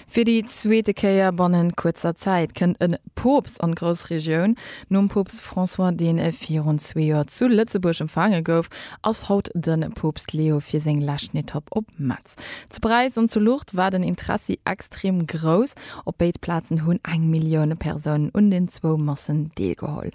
Fir déi zweete Kéier bannent kuerzer Zäit kënnt e Poopst an d'Groussregioun. Nom Poopst François, deen virun zwee Joer zu Lëtzebuerg empfaange gouf, ass haut de Poopst Leo fir seng leschten Etapp op Metz. Zu Paräis an zu Lourdes war den Interessi extrem grouss. Op béid Plazen hunn eng Millioun Persounen un den zwou Massen deelgeholl.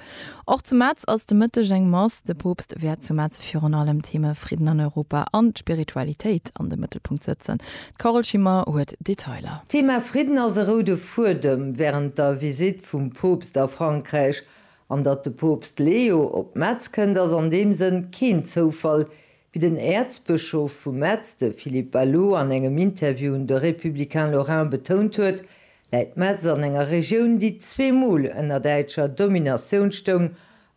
Och zu Metz ass de Mëtteg eng Mass. De Poopst wäert zu Metz virun allem d'Theme Fridden an Europa an d'Spiritualitéit an de Mëttelpunkt sëtzen. D'Carole Schimmer huet Detailer. D'Thema Fridden ass e roude Fuedem wärend der Visitt vum Poopst a Frankräich. An datt de Poopst Leo op Metz kënnt ass an deem Sënn keen Zoufall, Wéi den Äerzbëschof vu Metz, de Philippe Baloux, an engem Interview un de Républicain Lorrain betount huet, läit Metz an enger Regioun, déi zwee Mol ënner däitscher Dominatioun stoung,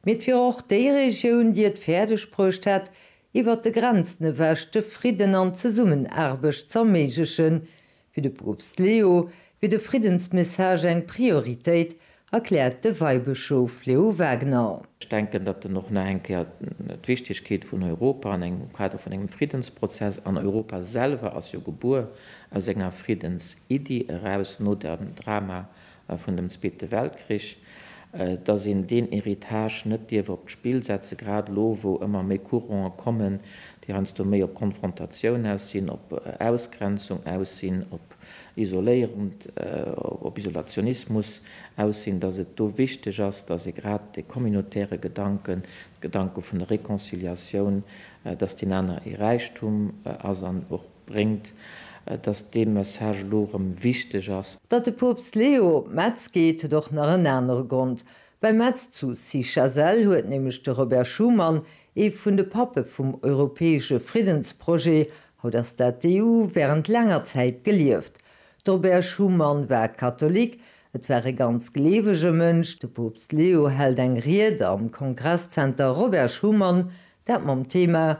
mee et wier och déi Regioun, déi et fäerdeg bruecht hätt, iwwert de Grenzen ewech de Fridden an d'Zesummenaarbecht z'erméiglechen, Fir de Poopst Leo wier de Friddensmessage eng Prioritéit, erkläert de Weibëschof Leo Wagner. Ech denken, datt en och nach eng Kéier d'Wichtegkeet vun Europa an engem Kader vun engem Friddensprozess, an Europa selwer ass jo gebuer aus enger Friddensiddi eraus no dem Drama vun dem Zweete Weltkrich, dass een deen Héritage net dierf op d'Spill setzen, grad elo, wou ëmmer méi Courante kommen, déi heiansdo méi op Konfrontatioun aus sinn, op Ausgrenzung aus sinn, op isoléierend, op Isolationismus aus sinn, dass et do wichteg ass, dass ee grad de communautaire Gedanken, de Gedanke vun der Reconciliatioun, dass deen aner ee Räichtum ass an och bréngt, datt dee Message elo erëm wichteg ass. Datt de Poopst Leo op Metz geet, huet och nach en anere Grond. Bei Metz zu Cichasel huet nämlech de Robert Schuman, ee vun de Pappe vum europäesche Friddensprojet, haut ass dat d'EU, wärend laanger Zäit gelieft. De Robert Schuman war Katholik, et war e ganz gleewege Mënsch. De Poopst Leo hält eng Ried am Kongresszenter Robert Schuman, dat mam Thema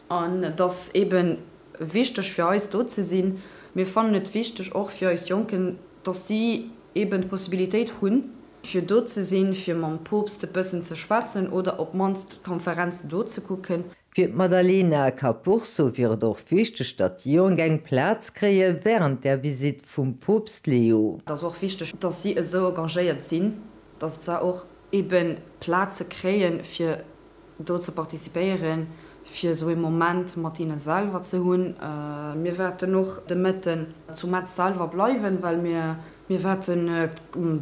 An et ass eebe wichteg fir eis, do ze sinn. Mir fannen et wichteg och fir eis Jonken, dass si eeben d'Possibilitéit hunn, fir do ze sinn, fir mam Poopst e bëssen ze schwätzen oder op d'mannst d'Konferenz do ze kucken. Fir d'Maddalena Capurso wier et och wichteg, datt d'Jonk eng Plaz kréie wärend der Visitt vum Poopst Leo. Et ass och wichteg, dass si esou engagéiert sinn, dass se och eebe Plaze kréien, fir do ze participéieren, fir esou ee Moment mat hinne selwer ze hunn. Mir wäerten och de Mëtten zu Metz selwer bleiwen, well mir wäerten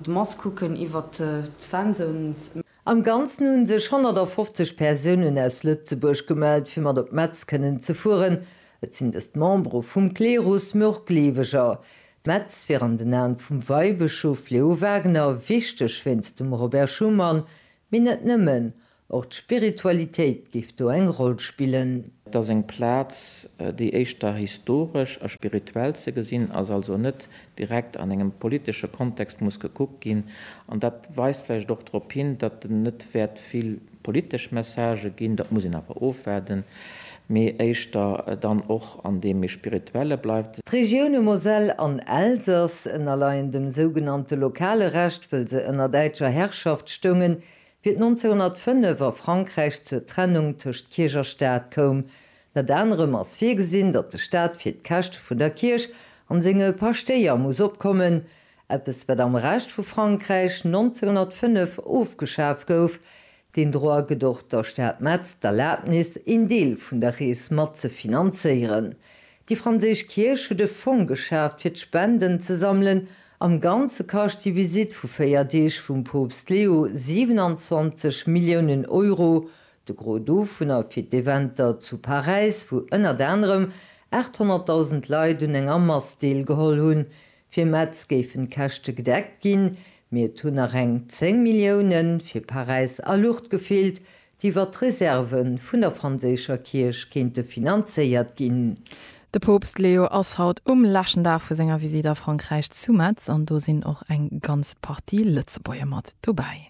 d'Mass kucken iwwert d'Fanzones. Am Ganzen hunn sech 150 Persounen aus Lëtzebuerg gemellt, fir mat op Metz kënnen ze fueren. Et sinn dëst Membere vum Klerus, mee och Gleeweger. Metz wier an den Aen vum Weibëschof Leo Wagener wichteg wéinst dem Robert Schumann, Mee net nëmmen, och d'Spiritualitéit géif do eng Roll spillen. Et ass eng Plaz, déi éischter historesch a spirituell ze gesinn ass, also net direkt an engem politesche Kontext muss gekuckt ginn. An dat weist vläicht och drop hin, datt et net wäert vill politesch Messagë ginn. Dat muss een awer ofwaarden. mee éischter dann och an deem méi spirituelle bleift. D'Regioune Moselle an Elsass ënnerleien dem sougenannte lokale Recht, wëll se ënner däitscher Herrschaft stoungen, fir 1905 a Frankräich zur Trennung tëscht Kierch a Staat koum. Ënnert anerem ass virgesinn, datt de Staat fir d'Käschte vun der Kierch an senge Paschtéier muss opkommen, eppes wat am Rescht vu Frankräich 1905 ofgeschaf gouf, Deen Droit gëtt och der Stad Metz d'Erlabnis, een Deel vun der Rees mat ze finanzéieren. Déi franséisch Kierch huet e Fong geschaaft, fir d'Spenden ze sammelen. Am Ganze kascht déi Visitt vu véier Deeg vum Poopst Leo 27 Milliounen Euro, de Gros dovunner fir d'Eventer zu Paräis, wou ënnert anerem 800.000 Leit un enger Mass deelgeholl hunn. Fir Metz géifen d'Käschte gedeckt ginn, mee et hunn nach eng 10 Millioune fir Paräis a Luucht gefeelt, déi iwwer d'Reserve vun der franséischer Kierch kéinte finanzéiert ginn. De Poopst Leo ass haut um leschten Dag vu senger Visitt a Frankräich zu Metz an do sinn och eng ganz Partie Lëtzebuerger mat dobäi.